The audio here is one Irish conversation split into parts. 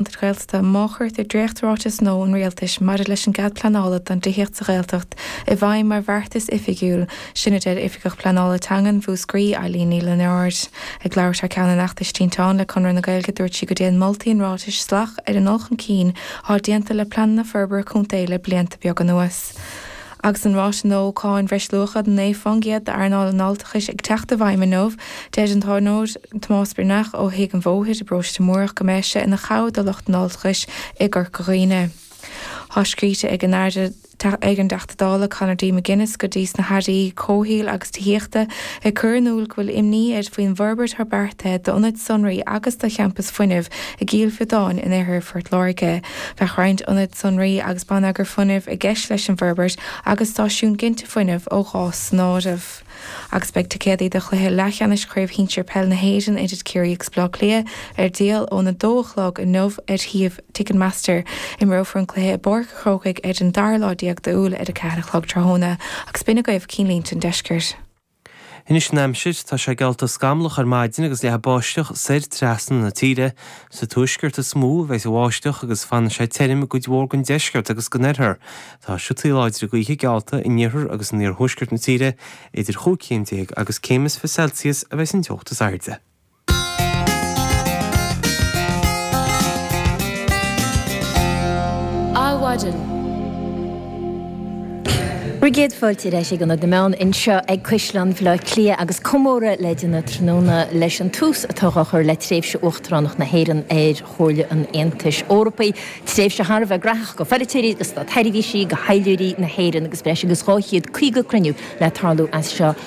Gaeltachta má chuirtear dréacht-Ráiteas Nua an Rialtais maidir leis an gCead Pleanála do Thithíocht sa Ghaeltacht i bhfeidhm mar bheartas oifigiúil, sin a deir Oifigeach Pleanála Teangan Mhúscraí, Eileen Ní Lionáird. Ag labhairt thar ceann an fheachtais Tinteán le Conradh na Gaeilge dúirt sí go dtéann moltaí an ráitis salach ar an ndul chun cinn atá déanta le pleananna forbartha contae le blianta beaga anuas. Agus an ráta nua cáin bhreisluacha de 9 fán gcéad d'earnáil an fháilteachais ag teacht i bhfeidhm inniu, deir an t-úinéir Tomás Breathnach ó Thigh an Bhóthair i bparóiste Múrach go mbeidh sé ina chabhair do lucht an fháilteachais i gCorca Dhuibhne. Tá scríte ag an dTeachta Dála Conor D McGuinness go dtí sna hAirí Comhshaoil agus Tithíochta ag cur in iúl go bhfuil imní air faoin bhforbairt atá beartaithe d'ionad sonraí agus do champas fuinnimh i gCill Mhíodáin in oirthear Phort Láirge. Bheadh roinnt ionad sonraí agus bonneagair fuinnimh i gceist leis an bhforbairt agus stáisiún ginte fuinnimh ó ghás san áireamh. Agus beidh ticéadaí do chluiche leathcheannais Chraobh Shinsir Peil na hÉireann idir Ciarraí agus Bleá Cliath ar díol óna 2 a chlog inniu ar shuíomh Ticketmaster. Imreofar an cluiche i bPáirc an Chrócaigh ar an dara lá déag d'Iúil ar a ceathair a chlog tráthnóna agus b'in agaibh cinn línte an deiscirt. Anois an aimsir, tá sé geallta scamallach ar maidin agus leathfaidh báisteach soir trasna na tíre. Sa tuaisceart is mó a bheidh an bháisteach agus fanfaidh sé tirim i gcuid mhór den deisceart agus den oirthear. Tá siotaí láidre gaoithe geallta in iarthar agus in iarthuaisceart na tíre, idir chúig chéim déag agus céim is fiche Celsius a bheidh an teocht is airde. Adhmhaidin. Céad fáilte ar ais ag Ionad na Meán anseo ag Caisleán Bhaile Átha Cliath agus comóradh le déanamh tráthnóna leis an tús atá dhá chur le tréimhse Uachtaránacht na hÉireann ar Chomhairle an Aontais Eorpaigh, tréimhse thar a bheith gnóthach go pholaiteoirí, go stát-sheirbhísigh, go thaidhleoirí na hÉireann agus breis agus 250 cruinniú le tarlú as seo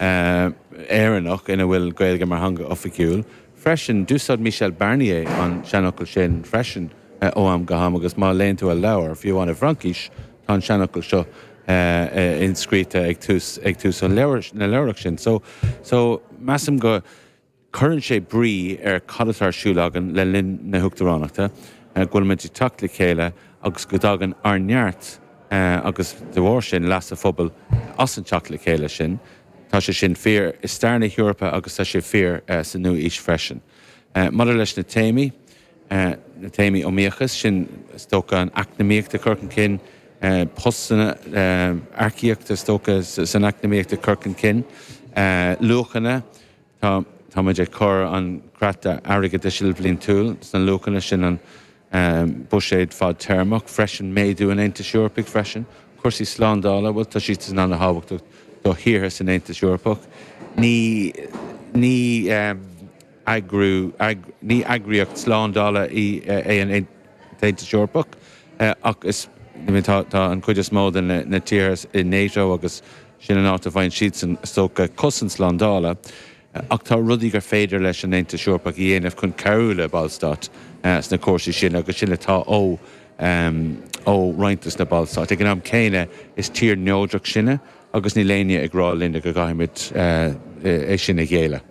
Éireannach ina bhfuil an Ghaeilge mar theanga oifigiúil freisin. D'úsáid Michel Barnier an seanfhocal sin freisin ó am go ham agus má léann tú a leabhar, fiú amháin i bhFraincis, tá an seanfhocal seo inscríte ag tús an leabhair sin. So, so, measaim go. Cuireann sé brí ar cad atá ar siúl againn le linn na huachtaránachta, go bhfuilimid ag teacht le chéile agus go dtagann ár neart agus de bharr sin leas an phobail as an teacht le chéile sin. Tá sé sin fíor i stair na hEorpa agus tá sé fíor sa nua-aois freisin. Maidir leis na téamaí, na téamaí iomaíochas, sin is dócha an eacnamaíocht ag cur chun cinn postanna, earcaíocht is dócha san eacnamaíocht ag cur chun cinn luachanna, Tá, táimid ag cur an chreata airgeadais ilbhliantúil sna luachanna sin an buiséad fadtéarmach freisin, méadú an Aontais Eorpaigh freisin. Cúrsaí slándála, bhuel tá siadsan ana-thábhachtach do thíortha san Aontas Eorpach. Ní, ní eagrú, ní eagraíocht slándála é an tAontas Eorpach ach is, tá an chuid is mó de na tíortha i NATO agus, Sin an áit a bhfaigheann siadsan, is dócha, cosaint slándála. Ach tá rudaí gur féidir leis an Aontas Eorpach a dhéanamh chun cabhrú le ballstáit sna cúrsaí sin agus sin atá ó roinnt de na ballstáit. Ag an am céanna, is tír neodrach sinne agus níl éinne ag rá linne go gcaithfimid é sin a ghéilleadh.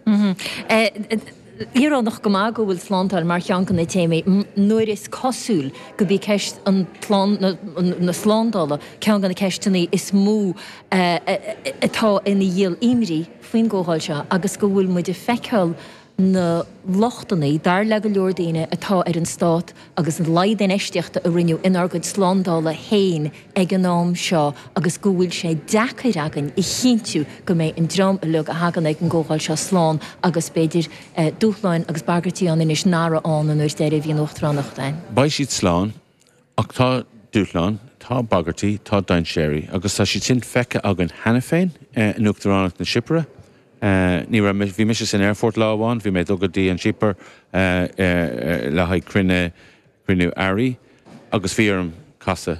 Íorónach go maith go bhfuil slándáil mar cheann de na téamaí nuair is cosúil gurb í ceist na slándála ceann de na ceisteanna is mó atá ina dhíol imní faoin gcomhdháil seo agus go bhfuil muid ag feiceáil na lochtanna, dar le go leor daoine, atá ar an stát. agus an laghad infheistíochta a rinneadh inár gcuid slándála féin ag an am seo agus go bhfuil sé deacair againn a chinntiú go mbeidh an dream uilig a thagann ag an gComhdháil seo slán agus b'fhéidir dúshláin agus bagairtí ann anois nach raibh ann an uair deiridh a bhí an Uachtaránacht ann. Beidh siad slán, ach tá dúshláin, tá bagairtí, tá dainséir agus tá siad sin feicthe againn cheana féin in Uachtaránacht na Cipire, Ní raibh mé, bhí mise san aerfort lá amháin, bhí mé ag dul go dtí an Chipir le haghaidh cruinne, cruinniú airí agus bhí orm casadh.